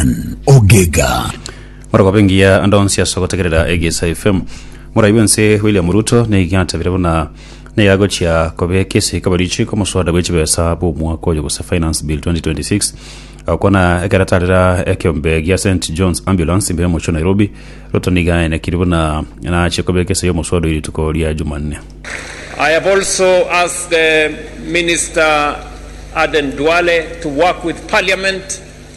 Brian Ogega. Morokaba engiya ande onsi ase ogotegerera Egesa FM. Morai bwense William Ruto nigo atabire buna nigo agochia kobeka esiko barichi komoswada bw'echibesa bw'omwaka oyo gose Finance Bill 2026 agokwana ekeratarera ekeombe gia St John's Ambulance imbere mochio Nairobi. Ruto nigo aenekiri buna nachie kobeka ese y'omoswada oyo rituko ria Jumanne. I have also asked the Minister Aden Duale to work with Parliament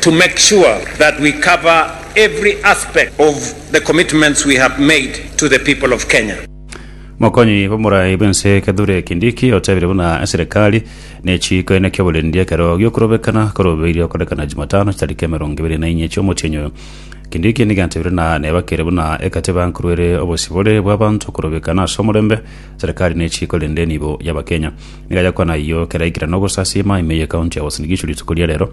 to make sure that we cover every aspect of the commitments we have made to the people of Kenya. Mokonyi b'omorai bw'ense Kithure Kindiki otebire buna eserekari nechiiko ene ki'oborendi ekero giokorobekana korobeirie okorekana Jumatano chitariki emerongo ebere na inye chi'omotienyi oyo. Kindiki nigo atebire na nebakere buna egatiba nkorwere obosibore bw'abanto korobekana ase omorembe, serekari nechiiko rende nibo y'abakenya. Nigo ayakwana ayio kera aikire nogosasiima ime y'ekaunti ya Uasin Gishu rituko ria rero.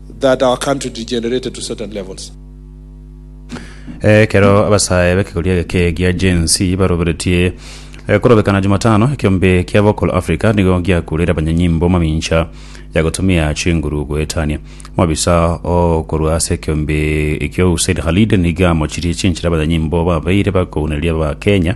that our country degenerated to certain levels. Ekero abasae b'ekegoria egeke gia Gen Z baroberetie eh, korobekana Jumatano, ekeombe kia Vocal Africa nigo giakureire abanyanyimbo mamincha ya gotumia chinguru goetania. Omobisa okorwa ase ekeombe ekio Hussein Khalid nigo amochirie chinchera abanyanyimbo babeire bakounereria Abakenya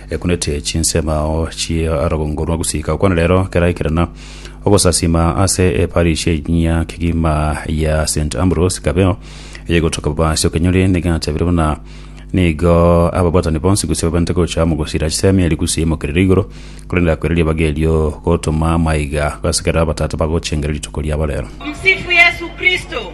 Ekunete chinsemo chi'orogongo rwa gusika okwana rero keraikerana ogosasima ase eparish enyia kegima ya St Ambrose Kabeo eyegotoka Babasi Okenyori nigatabire buna nigo ababwatani bonsi gose babente gocha amo gosira chisemi eri gusii emokerere igoro korende akwera ribaga erio gotoma maiga gasikera abatata bagochengera rituko riabo rero. Tumsifu Yesu Kristo.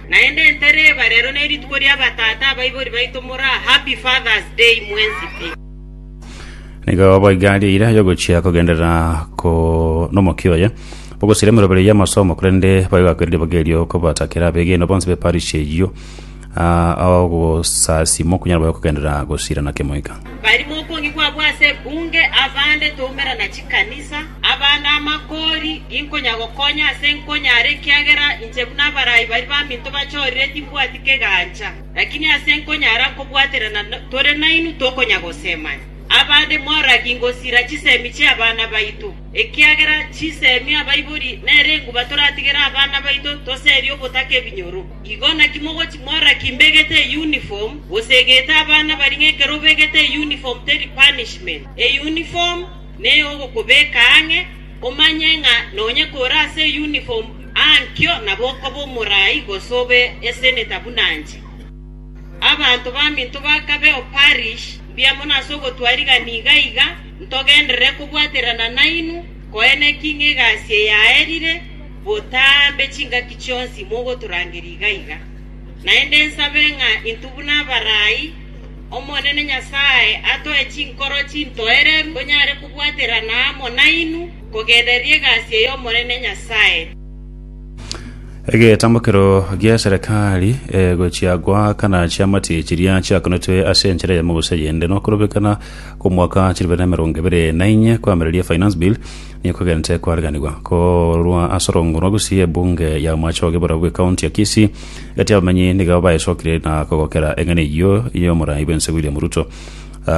Naende entere eba rero nerituko ria batata abaibori baito more aa happy fathers day mwensi pi. Nigo boigo aria eira yogochia kogenderera ko nomokia oye bogosiria emeroberi y'amasomo, korende bayogakweri ribaga erio kobatakera abegeni bonsi be parish eyio ah, aogosasima okunyara boye kogenderera gosiirana kemoika. Barimo okongi kwabwo ase ebunge, abande tomerana chikanisa. Abande amakoori inkonyagokonya ase nkonyare, ekiagera inche buna abarai baria baminto bachorire timbwati kegancha. Lakini ase nkonyara kobwaterana tore nainwe tokonyagosemania. Abande moragi ngosira chisemi chi'abana baito, ekiagera chisemi abaibori nere enguba toratigere abana baito toserie obotaka ebinyoro. Igo naki mogochi moragi mbegete eyuniform, gose egete abana baria ng'a ekero obegete eyuniform teri punishment. Eyuniform. ne ogokobeka ang'e, omanye ng'a nonye kore ase eyuniform ankio nabo okoba omorai gose obe eseneta buna inche. Abanto baminto bakabe o parish mbuya mono ase ogotwa rigani iga iga, ntogenderere kobwaterana nainwe, koene ki ng'a egasi eyaerire botambe chingaki chionsi mogotorangeria iga iga. Naende nsabe ng'a intwe buna abarai “Omonene Nyasae atoe chinkoro chintoereru tonyare kobwaterana amo nainwe, kogenderera egasi ey'Omonene Nyasae.” Egetamokero gi'eserekari egochia goaka na chiamati chiria chiakonetwe ase enchera eyemo gose eyende nokorobekana kw'omwaka chilifu bibere na emerongo ebere na inye kwamireria Finance Bill nigo kogentete kwaariganigwa korwa ase orong'o rwa Gusii ebunge ya Omoache o Gebura bw'Ekaunti ya Kisii Gati abamenyi nigo baesokire na kogokera eng'ana eyio y'omorai bw'ense William Ruto.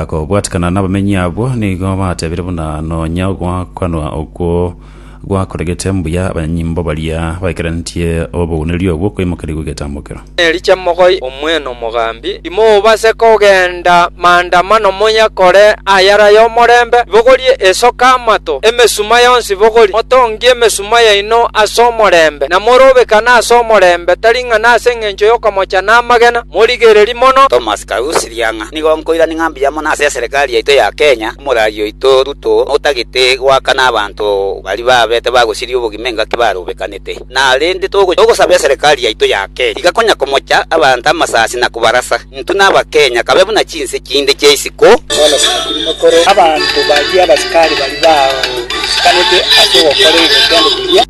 Kobwatikana n'abamenyi abwo nigo batebire buna nonya ogwakanwa okwo gwakoregete mbuya abanyimbo baria baikarantie obogwenireria obwo okoimokeria gw'egetambokero. Eri chemogoi omwene omogambi, imobase kogenda maandamano moyakore ayare ay'omorembe, ibogorie esoka amato, emesuma yonsi ibogorie, motongie emesuma, nyuma yaino ase omorembe, na morobekane ase omorembe, tari ng'a nase engencho y'okomocha na amagena, morigererie mono. Thomas Karusi Riang'a, Nigo nkoirania ng'a mbuya mono ase eserekari yaito ya Kenya, omorari oito Ruto otagete goakana abanto baria babete bagosiria obogima engaki barobekanete. Na rende togosaba eserekari yaito ya Kenya iga konya komocha abanto amasasi na kobarasa. Intwe n'Abakenya kabe buna chinse chinde chia isiko. Bono sakiri mokore abanto baria abasikari baria bagoisikanete ase ogokora egetendo keria.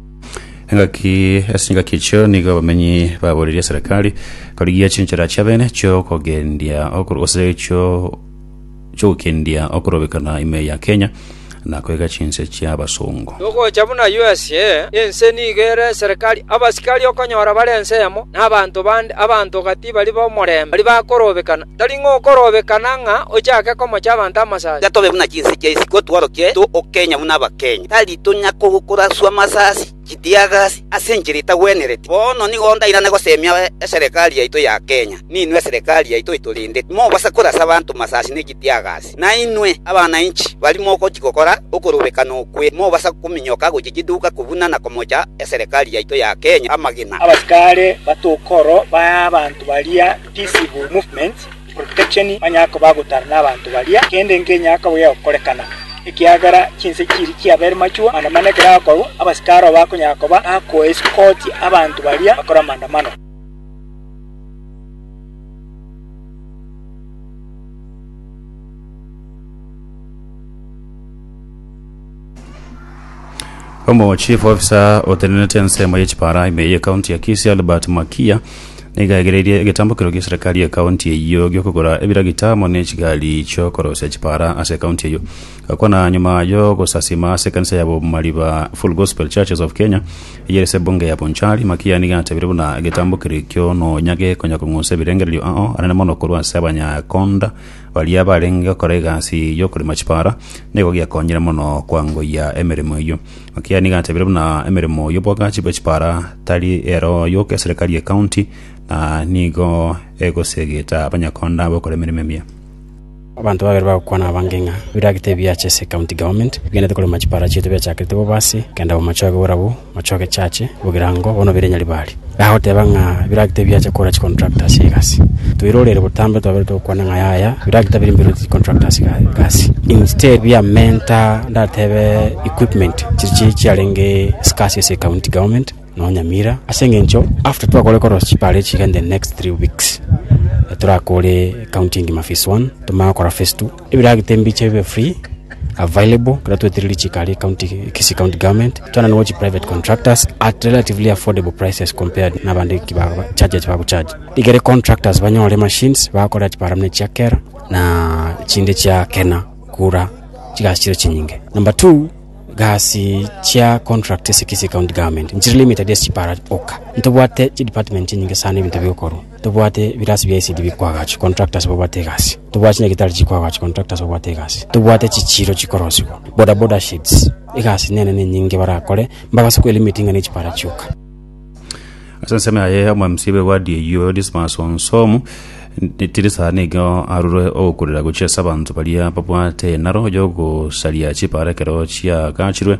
Engaki ase chingaki echio nigo abamenyi baborerie eserekari korigia chinchera chiabene chiokogendia okoru- gose chio chogokendia okorobekana ime ya Kenya na koiga chinse chia basongo. Togocha buna USA, ense nigo ere eserekari, abasikari okonyora bare ensemo, na abanto bande, abanto gati baria b'omorembe, baria bakorobekana. Tari ng'a okorobekana ng'a ochake komocha abanto amasasi. Tiga tobe buna chinse chia isiko, tworokie to o Kenya buna Abakenya. Tari tonya koraswa amasasi. Chitiagasi ase enchera etagwenereti. Bono nigo ndairane gosemia eserekari yaito ya Kenya, ninwe eserekari yaito etorende. Timobasa korasa abanto masasi ne chitiagasi. Nainwe, abananchi, baria mogochia gokora okorobekana okwe, timobasa kominyoka gochia chiduka kobuna na komocha eserekari yaito ya Kenya amagena. Abasikare batokoro ba abanto baria Peaceable Movement Oritacheni onye akoba agotara nabanto baria, kende nkenyara kobuya gokorekana, ekiagera chinse chiria chiabere machwo, manda mana ekero akorwa, abasikari obo bakonyara koba bakoesikoti abanto baria bakore amandamano. Omo chief officer otenenete ensemo ye chipara ime ye county ya Kisii Albert Makia niga aigereirie egetambokero gie serikali ye county eyio giokogora ebiragita amo ne chigari chiokorosia chipara ase county eyio gakwana nyuma yo gosasima ase ekanisa ya Bomariba Full Gospel Churches of Kenya eyio ase ebunge ya Bonchari Makia niga atebirie buna egetambokero ekio nonya gekonya kong'unsa ebirengererio ao anene mono korwa ase abanyakonda Baria barenge gokora egasi y'okorema chipara nigo giakonyire mono kwangoyia emeremo eyio. Ekiagera nigo atebirie buna emeremo y'obwagachi bwe chipara tari ero yoka eserekari ye county na nigo egosegeta abanyakonda bokora emeremo emiya. Abanto babere bagokwana abange ng'a biragete ebiacha ase ecounty government bigenderete korema chipara chiaito biachakerete bobe ase kenda bomochoge bore abwo. Moche ogechache bogirango bono bire Nyaribari. Gagoteba ng'a biragita biache kora chicontractors egasi. Toire orere botambe twabeire togokwana ng'a yaya biragita biri mbirwe chicontractors gasi. Instead biamenta ndatebe equipment chiria chiarenge scarce ase county government nonya Nyamira ase eng'encho after twakore korosia chipara echi iga in the next three weeks torakore county engima phase one tomanye gokora phase two. Ebiragita embiche bibe free available ekero tweterire chikari county Kisii county government twananigwe chi private contractors at relatively affordable prices compared nabande ki ba charge eki bago charge igere contractors banyore machines bakore eki barabwo ne chia kera na chinde chia kena kura chigasi chire chinyinge number two gasi chia contract ase Kisii county government nchire limited ase chipara oka ntobwate chi department chinyinge sana ebinto bigokorwa Tobwate ebirasi bia esidi bikoa agachi, contractors babwate egasi. Tobwate chinyagitari chikoa agachi, contractors babwate egasi. Tobwate chichiiro chikorosigwa, bodaboda sheds. Egasi nene nenyinge barakore, mbagase kwelimiti ng'a nechipara chioka. Ase ensemo yaye omomc b'ewadi eyio Onesmus Onsomu tiri sana iga arure ogokurera gochia ase abanto baria babwate enaro yogosaria chipara ekero chiagachirwe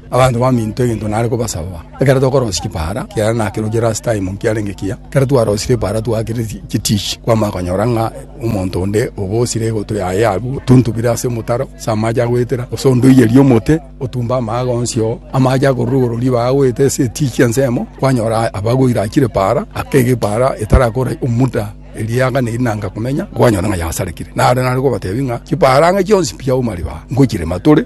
Abanto baminto egento nare kobasaba. Ekero tokorosia epaara, ekiagera nakeroche last time nkiarenge ekiya, ekero twarosire epaara twakire chitishi, kwamanya konyora ng'a omonto onde obosire egotwe yaye agwo, tuntubire ase omotaro ase amache agoetera, gose onde oiyerie omote otumbe amaaga onsi oo, amache akorwa igoro ribaga agoeta ase etichi ensemo, kwanyora abagwo ira achire epaara, akega epaara etarakora omuda eriaga neri nanga komenya, kwanyora ng'a yasarekire. Naro nare kobatebia ng'a chipaara ang'e chionsi mpiya auma ribaga, ngochirema tore.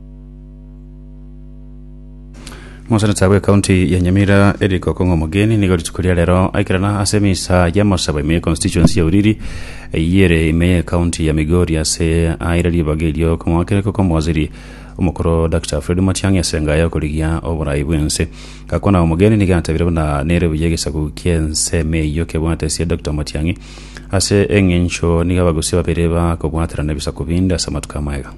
Mosenete bwe county ya Nyamira Eric Okong'o Omogeni nigo rituko ria rero aikerana ase emisa ya Masaba ime ya constituency ya Uriri eyere ime ya county ya Migori ase aire ribaga erio okomoakereka okomwaziri omokoro Dr. Fred Matiang'i ase enga ya okorigia oborai bw'ense gakwana Omogeni nigo atabire buna nere buya egesaku ki'ense ime eyio kebwate esia Dr. Matiang'i ase eng'encho nigo abagusia babere bakobwaterana ebisaku binde ase amatuko amaya.